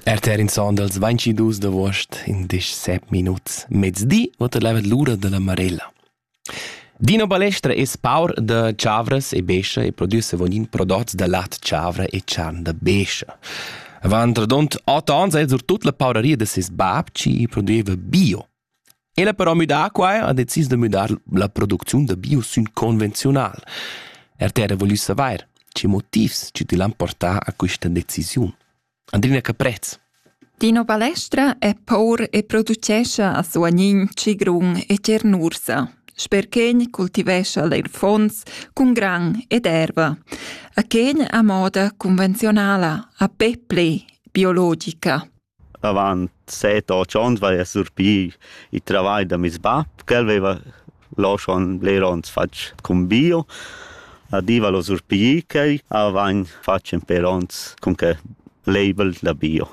RTR in son dals 22 d'agost in disch 7 minuts mezdi vota levet l'ura della Marella. Dino Balestra es paur da Chavras e Bescia e produce vonin prodots da lat Chavra e charn da Bescia. Avant radont 8 ans è sur tut la pauraria de ses bab ci produeva bio. El ha però müdà quai ha decis da müdar la producziun da bio sün convenziunal. RTR ha voglü savair che motivs chi til han portà a quista decisiun. Andrina Caprez. Dino Balestra è por e producescha a Suagnin, Cigrun e Cernursa. Sperchegn cultivescha leir fons cun gran ed erva. A Chen a moda convenzionala, a peple, biologica. Avant set otg ons vaia surpì il travai da meis bap, ch'el veva lò schon bler ons fatg cun bio. A Diva l'ho surpigì quai, avain fatg ün pêr ons cun que label da bio.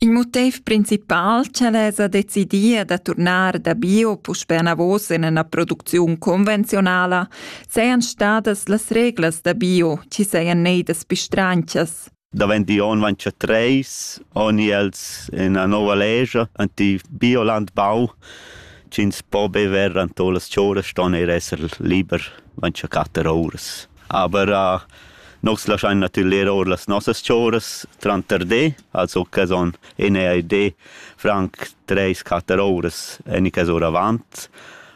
Il motiv principal ch'el esa decidia da turnar da bio puspè anavos in üna producziun convenziunala sean stadas las reglas da bio chi sajan neidas pistranchas. Davent i on vainsa treis, oni els ena nova legia ant il biolandbau, ch'ins po bever ant las chouras ston eir esser liber vainsa quatter ouras. Aber uh, Nos laschain natürler our las nossas chouras tranter de, also que son enea de franc treis quatter ouras en iques oravant,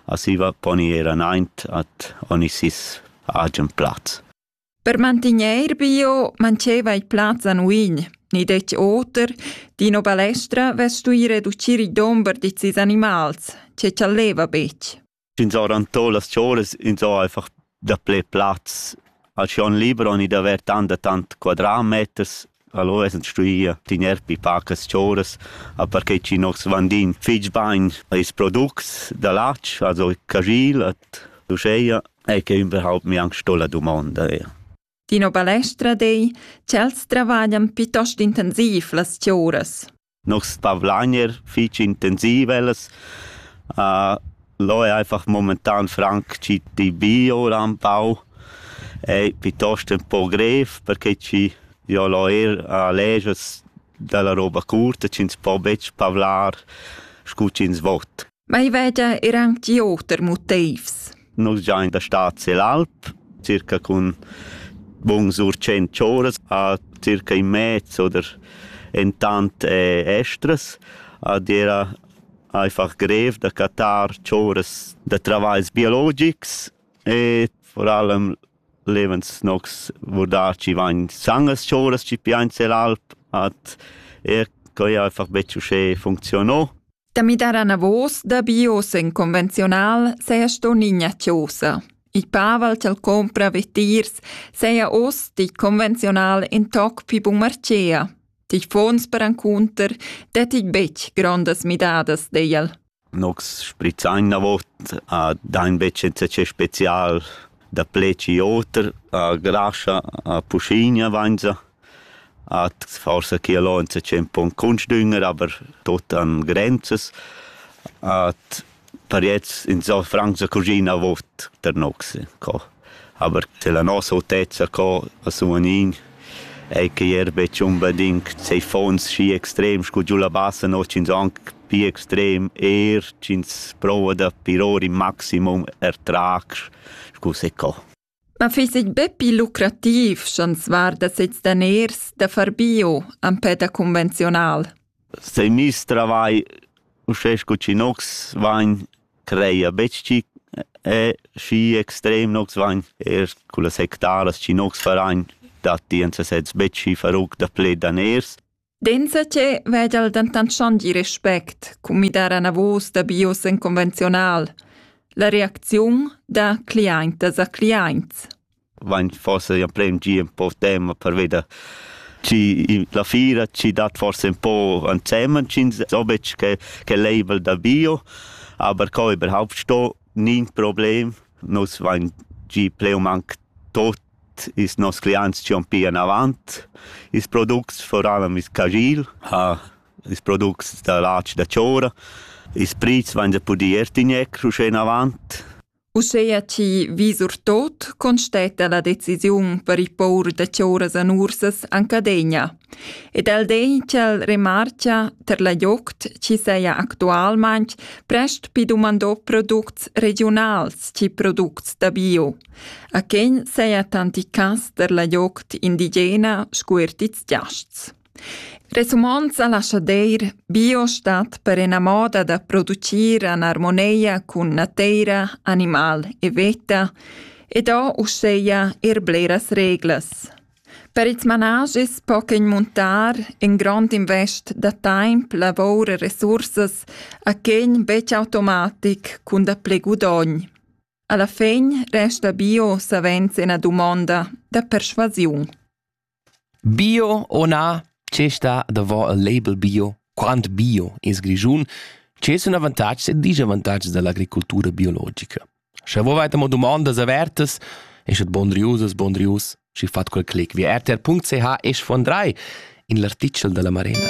a siva poni ir anaint at oni sis agen plaz. Per mantegnair bio mancheva il plaz da nuigl, ni detg oter, d'ina balestra vess stuì reducir il dumber da sis animals, che chaleva betg. Ins ha rantà las cholas, ins ha einfach dapli plaz. Al schon liber han i d'aver tant e tant quadratmeters. Allora esen stuì tiner pi pacas choras, a perche chi nos vandin fich bain ils products da latg, also cajil et uscheia, e che überhaupt mi anche sto la domanda eir. Dino Balestra dei, ch'els travaglian piuttost intensiv las choras. Nos pavlagner fich intensiv ellas. lò è einfach momentan franc chi di bio ran pau e pitost ün po grev perché chi jo l'ho eir legias da la roba curta chi'ns po betg pavlar scu chi'ns vot. Ma i veda er anc di oter motivs. Nus giain da stad sel alp, circa cun buns sur cent choras a circa in mez oder entant eh, estras. Ad era einfach grev da catar choras da travagls biologics e vor allem levens nox vurdar ci vain sangas choras ci piain sel alp at er coi einfach betg uschè funziono. Da midar anavos da bios en convenziunal seia sto nigna chiosa. Il Pavel ch'el compra vetiers seia oz di convenziunal in toc pi bumarcea. Ti fons per ancunter detig betg grondas midadas deiel. Nox sprizain na vot a dain vecenza special da pleci oter a grascha a puscinia vainza. Hat forsa chi al ho ün tschemp ün cuntsdünger, aber tuot han grenzas. Hat pariets insò franc sa cuschina vot der nox co. Aber se la nossa autezza co as umanin ei que eir betg unbedingt sei fons schi extrem scu giù la bassa no ch'ins anc pi extrem, eir ch'ins prouva da piror in maximum er trac scu se co. Ma fiss eir be pii lucrativ sch'ans varda sezs daners da far bio empè da convenziunal. Stai miss travai uschè scu chi nox vain creia betg chi e schi extrem nox vain eir cullas hectaras chi nox farain datti ins sezs betg schi faruc da pled daners. Denzatge vegel dentant schon di respect cun midar anavos da bios en convenziunal. La reacziun da cliaintas a cliaints. Vain forse ja prem gi un po tema per veder ci la fira ci dat forse un po ansemen cin so betg che che label da bio aber co überhaupt sto nin problem nus vain gi pleum anc tot ils nos cliaints chi'on pia anavant. Ils products foran ami's cagil, ha ils products da latg da chora. Ils prits vain da pudir eir tigner uschè inavant. Uscheia chi vis our tot constetta la decisiun per il pour da chauras an ursas an Cadegna. Ed el den ch'el remarcha ter la joct chi seia actualmaing prest pi dumandò products regiunals chi products da bio. A quegn seia tanticas der la gliocht indigena scu er tits giasts. Resumond sa lascha deir, bio stat per ena moda da producir an armoneia cun nateira, animal e veta, ed ho uscheia er bleras reglas. Per ils managis po quegn muntar in grond invest da taimp, lavor e resursas a quegn vec automatic cun da ple gudogn. Alla fegn resta bio savens ina dumonda da perschuasiun. Bio o na, che sta davò il label bio? Quant bio es Grischun? Che sun avantatgs e disavantatgs dall'agricultura biologica? Sche vo veit amo dumondas avertas, es et bon riusas, bon rius, schi fat quel clic via rtr.ch es von 3 in l'artichel della Marena.